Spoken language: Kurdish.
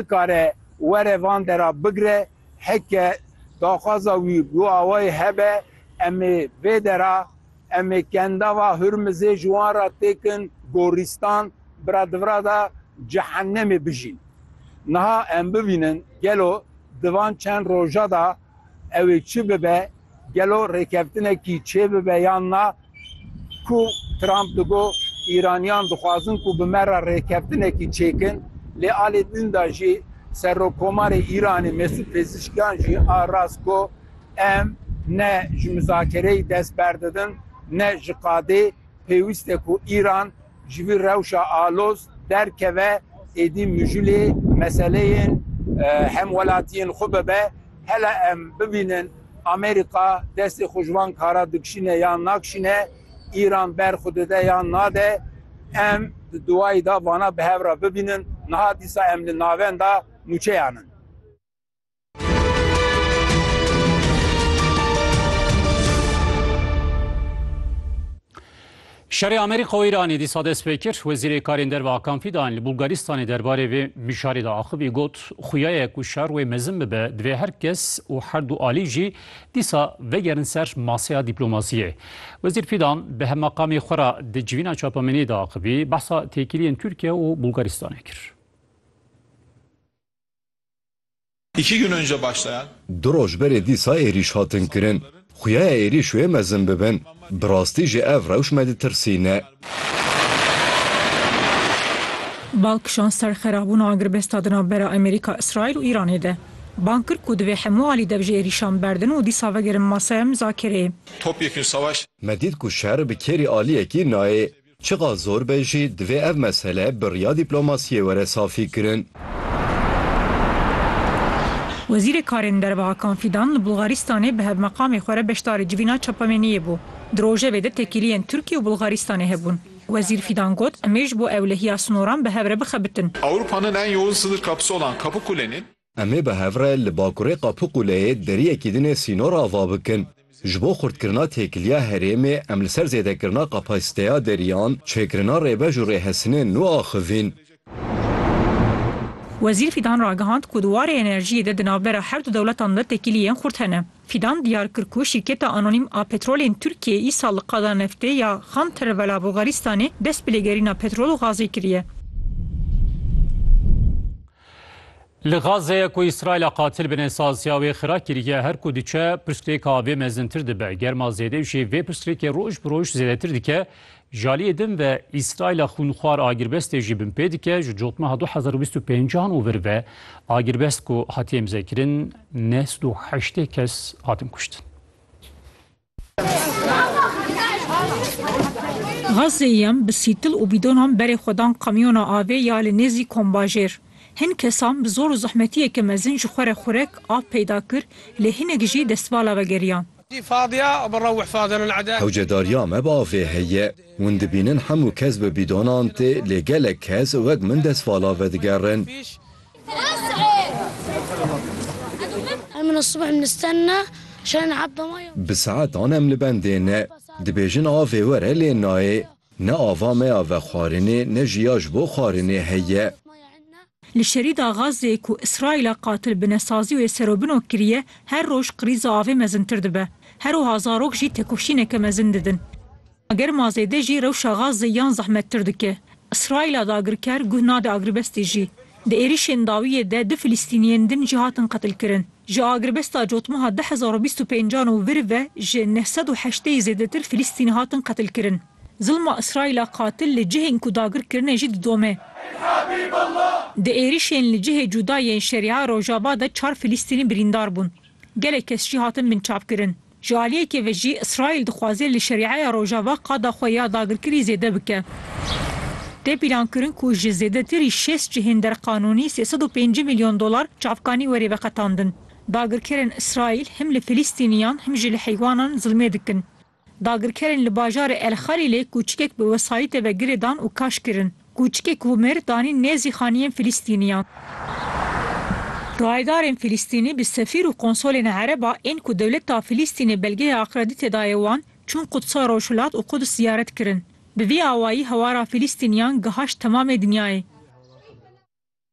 Bikare were van dera bigre, heke daxwaza wî bi awayî hebe, em ê vê dera, em ê kendava Hurmizê ji wan re têkin gorîstan, bi re di vira de cehennemê bijîn. Niha em bibînin gelo di van çend roja de Ew ê çi bibe, gelo rêkeftinekî çêbibe yan na ku Trump digot Îraniyan dixwazin ku bi me re rêkeftinekî çêkin, lê alê din de jî Serokkomarê Îranê Mesûd Pezişkiyan jî a rast got, Em ne ji mizakereyê dest berdidin ne ji qadê, pêwîst e ku Îran Ji vî rewşa aloz derkeve êdî mijûlê meseleyên hemwelatiyên xwe bibe. Hele em bibînin Amerîka destê xwe ji van kara dikişîne yan nakişîne, Îran ber xwe dide yan nade. Em di dûayî de vana bi hev re bibînin. Niha dîsa em li navenda nûçeyan in. Şerê Amerîka û Îranê dîsa dest pê kir. Wezîrê Karên Derve Hakan Fîdan li Bulgaristanê derbarê vê mijarê de axivî got, xuya ye ku şer wê mezin bibe, divê her kes û her du alî jî dîsa vegerin ser maseya dîplomasiyê. Wezîr Fîdan bi hemaqamê xwe re di civîna çapemeniyê de axivî, behsa têkiliyên Tirkiye û Bulgaristanê kir. İki gün önce başlayan. Du roj berê dîsa êrîş hatin kirin. Xuya ye êrîş wê mezin bibin. Bi rastî jî ev rewş me ditirsîne. Bal kişand ser xerabûna agirbesta di navbera Amerîka, Îsraîl û Îranê de. Bang kir ku divê hemû alî dev ji êrîşan berdin û dîsa vegerin masaya mizakireyê. Topyekun savaş. Me dît ku şer bi kêrî aliyekî nayê. Çiqas zor be jî divê ev mesele bi riya dîplomasiyê were safîkirin. Wezîrê Karên Derve Hakan Fîdan li Bulgaristanê bi hevmeqamê xwe re beşdarî civîna çapemêniyê bû. Di rojevê de têkiliyên Tirkiye û Bulgaristanê hebûn. Wezîr Fîdan got, Em ê ji bo ewlehiya sinoran bi hev re bixebitin. Ewropa nin en youn sınır kapısı olan Kapıkule'nin, Em ê bi hev re li bakurê Qapuquleyê deriyekî din ê sînor ava bikin. Ji bo xurtkirina têkiliya herêmê em li ser zêdekirina kapasîteya deriyan, çêkirina rêbej û rêhesinên nû axivîn. Wezîr Fîdan ragihand ku di warê enerjiyê de di navbera her du dewletan de têkiliyên xurt hene. Fîdan diyar kir ku şîrketa anonîm a petrolên Tirkiyeyê îsal li qada neftê ya Xan Tervel a Bulgaristanê dest bi lêgerîna petrol û gazê kiriye. Li Gazeyê ku Îsraîla qatil bi nesaziya wê xira kiriye, her ku diçe pirsgirêka vê mezintir dibe. Germa zêde û jî vê pirsgirêkê roj bi roj zêdetir dike. Ji aliyê din ve Îsraîla xwînxwar agirbestê jî binpê dike. Ji cotmeha du hezar û bîst û pênc an û vir ve agirbest ku hatiye imzekirin neh sed û heştê kes hatin kuştin. Gazê yem bi sîtil û bîdonan berê xwe dan kamyona avê ya li nêzî kombajêr. Hin kesan bi zor û zehmetiyeke mezin ji xwe re xurek, av peyda kir, lê hinek jî destvala vegeriyan. Hewcedariya me bavê heye. Hûn dibînin hemû kes bi bîdonan tê, lê gelek kes wek min destvala vedigerin. Bi saetan em li bendê ne. Dibêjin avê were lê nayê. Ne ava me ya vexwarinê ne jî ya ji bo xwarinê heye. Li şerîda Gazeyê ku Îsraîla qatil binesazî wê serobino kiriye, her roj krîza avê mezintir dibe. Her wiha zarok jî têkoşîneke mezin didin. Germa zêde jî rewşa Gazê yan zehmettir dike. Îsraîla dagirker guh nade agrbestê jî. Di êrişên dawiyê de du Filîstîniyên din jî hatin qetilkirin. Ji agrbesta cotmeha du hezar û bîst û pêncan û vir ve ji neh sed û heşteyî zêdetir Filîstînî hatin qetilkirin. Zilma Îsraîla qatil li cihên ku dagir kirine jî didome. Di êrişên li cihê cuda yên Şeria Rojava de çar Filîstînî birîndar bûn. Gelek kes jî hatin binçavkirin. Ji aliyekê ve jî Îsraîl dixwaze li Şerîeya Rojava qada xwe ya dagirkirî zêde bike. Tê pîlankirin ku ji zêdetirî şêst cihên derqanûnî sê sed û pêncî milyon dolar çavkanî werê veqetandin. Dagirkerên Îsraîl him li Filîstîniyan him jî li heywanan zilmê dikin. Dagirkerên li bajarê El Xalîlê kûçikek bi wesayîtê ve girêdan û kaş kirin. Kûçikê komêr danîn nêzî xaniyên Filistîniyan. Rayedarên Filistînî bi sefîr û konsolên ereb a ên ku dewleta Filistînê belgeya akredîtê daye wan, çûn Qudsa Rojhilat û Quds ziyaret kirin. Bi vî awayî hewara Filistîniyan gihaşt temamê dinyayê.